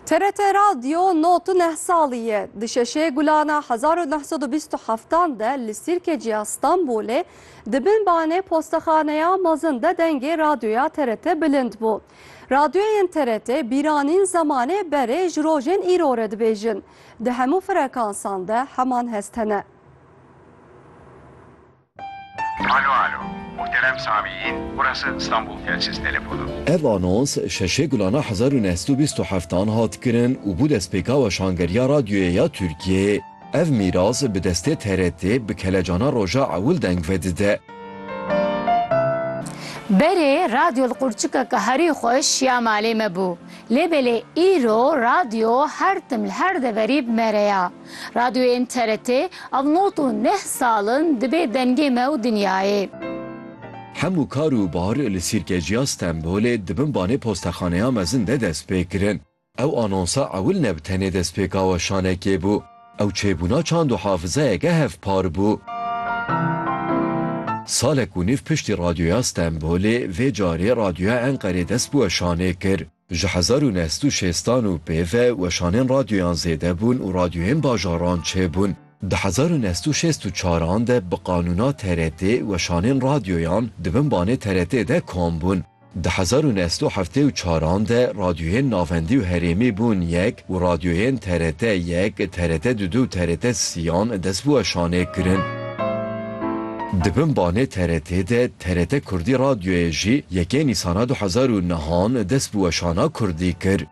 TRT Radyo not û neh salî ye. Di şeşê gulana hezar û neh sed û bîst û heftan de li Sîrkeciya Stenbolê di bin banê postexaneya mezin de dengê radyoya TRT bilind bû. Radyoyên TRT bîranîn zemanê berê ji rojên îro re dibêjin. Di hemû frekansan de heman hest hene. Alo alo. Muhterem Sami yîn, burası İstanbul Telsiz Telefonu. Ev anons şeşê gulana hezar û neh sed û bîst û heft an hat kirin û bû destpêka weşangeriya radyoyê ya Tirkiyeyê. Ev mîras bi destê TRT bi kelecana roja ewil deng vedide. Berê radyo li qurçikeke herî xweş ya malê me bû. Lê belê îro radyo her tim li her deverî bi me re ya. Radyoyên TRT ev nod û neh sal in dibê dengê me û dinyayê. Hemû kar û bar li Sîrkeciya Stenbolê di bin banê postexaneya mezin de dest pê kirin. Ew anonsa ewil ne bi tenê destpêka weşanekê bû, ew çêbûna çand û hafizayeke hevpar bû. Salek û nîv piştî Radyoya Stenbolê vê carê Radyoya Enqerê dest bi weşanê kir. Ji hezar û neh sed û şêstan û pê ve weşanên radyoyan zêde bûn û radyoyên bajaran çêbûn. Di hezar û neh sed û şêst û çar an de bi qanûna TRT weşanên radyoyan di bin banê TRT de kom bûn. Di hezar û neh sed û heftê û çar an de radyoyên navendî û herêmî bûn yek û radyoyên TRT yek, TRT du du û TRT siyan dest bi weşanê kirin. Di bin banê TRT de TRT Kurdî Radyoyê jî yekê Nîsana du hezar û nihan dest bi weşana Kurdî kir.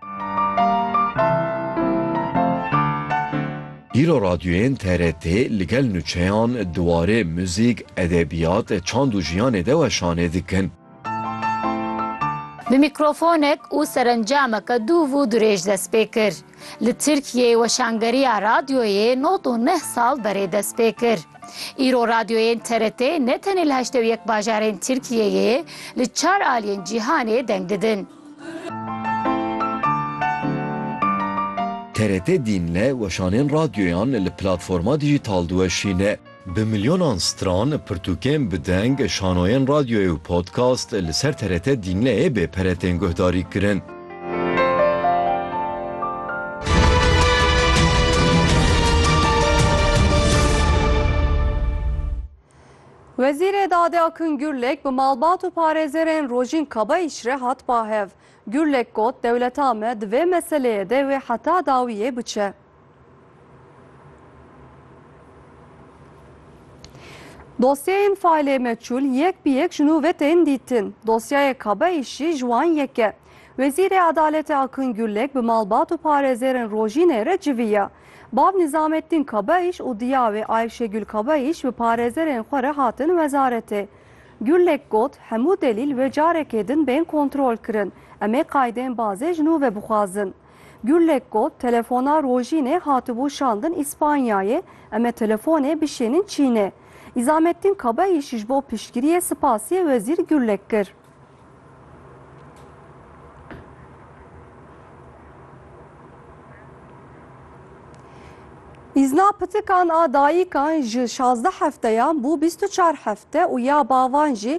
Îro radyoyên TRT li gel nuçeyan di warê muzîk, edebiyat, çand û jiyanê de weşanê dikin. Bi mîkrofonek û serencameke dûv û dirêj dest pê kir. Li Tirkiyeyê weşangeriya radyoyê nod û neh sal berê dest pê kir. Îro radyoyên TRT ne tenê li heştê û yek bajarên Tirkiyeyê li çar aliyên cîhanê deng didin. TRT dînle weşanên radyoyan li platforma dijîtal diweşîne. Bi milyonan stran, pirtûkên bi deng, şanoyên radyoyê û podcast li ser TRT Dîmleyê bê pere tên guhdarî kirin. Wezîrê Dadê Akın Gürlek bi malbat û parêzerên Rojîn Kabayiş re hat bahev. Gürlek got dewleta me di vê meseleyê de wê heta dawiyê biçe. Dosyeyên faîlê meçûl yek bi yek ji nû ve tên dîtin. Dosyayê Kabeîşî ji wan yek e. Wezîrê Adaletê Akın Gürlek bi malbat û parêzêrên Rojînê re civî ye. Bav Nîzamettin Kabeîş û diya wê Ayşegül Kabeîş bi parêzerên xwe re hatin wezaretê. Gürlek got, Hemû delîl wê carekê din bên kontrolkirin. Em ê qaydên bazê ji nû ve bixwazin. Gurlek got, Telefona Rojînê hatibû şandin Îspanyayê, em ê telefonê bişênin Çînê. Îzamettin Kaba îşî ji bo piştgiriyê sipasîyê Wezîr Gurlek kir. Îzna pitikan a dayikan ji şazdeh hefteyan bû bîst û çar hefte û ya bavan jî